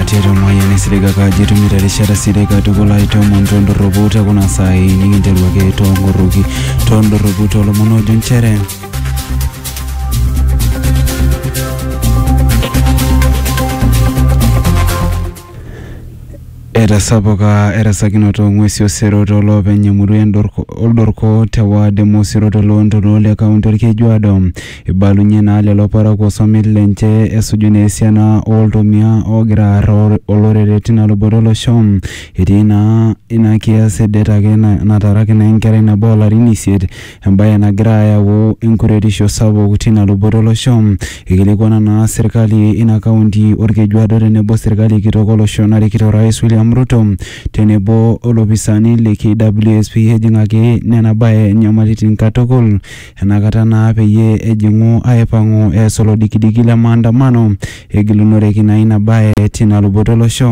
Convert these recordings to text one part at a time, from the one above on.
tiatua mayian esirika kaji itumito erishata sidai katukul aitoomon tondorropu te kuna saai nikinteru ake toongorroki tondorropu toolomon oojo nchere etasapuka erasakinoto ng'uesi osero tooloopeny emurua endorko- oldorko te waad e mosiro toloontoluo le kaunti olkejuado Eibalunye naa lelo parakuo somit lenche esuju naa esiana oo ltomia oogira aar olorere tina luboto e losho. Etii naa ina kias e det ake nataraki naa enkerai nabo oo larin isiet, embae nagira ayau enkuretisho sapuk tina luboto e losho. Eikilikuana naa serkali ina kaunti Olkejuado tenebo serkali kitok olosho narikito Orais William Ruto tenebo o lopisaani le KWSP ejing'aki nena bae nyamalitin katukul. Ena kata naa peyie ejing'u aipang'u eas olodikidiki le maandamano egilunoreki naa ina bae tina luboto olosho.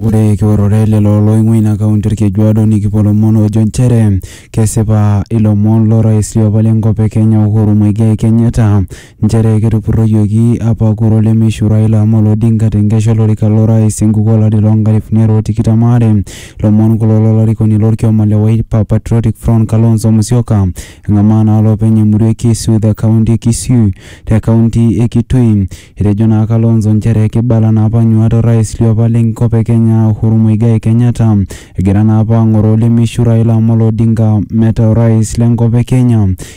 Ore kiorore lelo oloing'ua ina kaunti Olkejuado nikipuo lomon oojo nchere kesipa ilomon lo rais liopa le nkop e Kenya Uhuru Muigai Kenyatta Nchere ketupurroyioki apa kura olemeishiu Raila Amolo Odinga te nkesha olorika lo rais enkuku olari loo nkalifuni are o tikitam aare. Lomon kulo lo larikoni lo lkioma le Wiper Patriotic Front Kalonzo Musyoka. Engamaa naa lopeny emurua e Kisu the county e Kisii te county e Kitui. Etejo naa Kalonzo nchere keibala naa apa nyuaat o rais li apa le nkop e Kenya Uhuru Muigai Kenyatta egira naa apa angoroo olemeishiu Raila Amolo Odinga meta o rais le nkop e Kenya.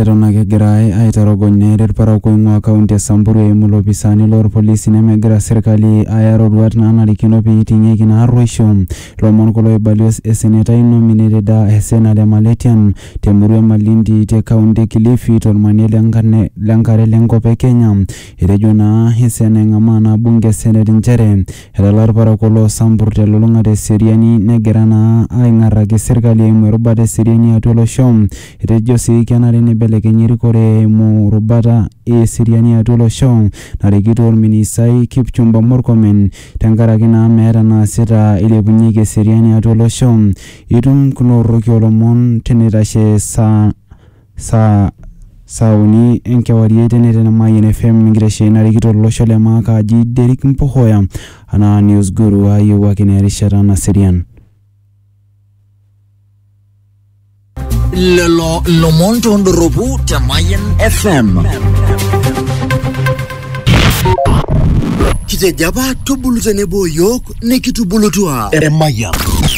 Eton ake egirai aitorogony neeta ilparakuo oing'uaa kaunti e Samburu eimu ilopisaani loo lpolisi nemegira serkali aya roruat naanarikino pee eiting'ieki ina arruoisho. Lomon kulo oibalioo esenetai nominated aa Hesena Lemaletian te murua e Malindi te kaunti e Kilifi to lmanie le nkare le nkop e Kenya. Etejo naa Hesena eng'amaa naa bunge e senet nchere Etala ilparakuo loo Sampur te lulung'ata e seriani negira naa aing'arraki serkali eimu erubata e seriani atua olosho. Etejo sii kenare neibelekenyi erikore eimu rubata e seriani atua olosho narikito olministai Kipchumba Murkomen tenkaraki naa meeta naasita eilepunyeki eseriani atua olosho. Itum kulo rroki oo lomon teneitashe esaa. Saa saa uni enkewarie eitenete ena Mayian FM enkitesheni narikito olosho le maa kaji Derrick Mpohoya anaa News Guru aayewuo ake naa erishata naserian. Lelo lomon tondorropu te Mayian FM. Kitejo apa tubulu tenebo o yiok nikitubulutua emayian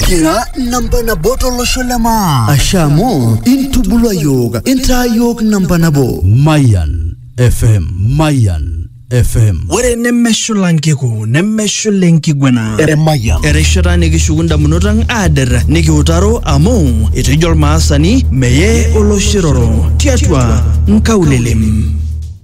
kira namba nabo tolosho le maa ashe amu intubulua yiok intaa yiok namba nabo Mayan FM. Mayan FM. ore nemeshula nkiku nemeshula enkiguana emayian erishata nikishuku ndamunot ang aader nikiutaro amu etejo olmaasani meye oloshiroro tiatua nkaulelem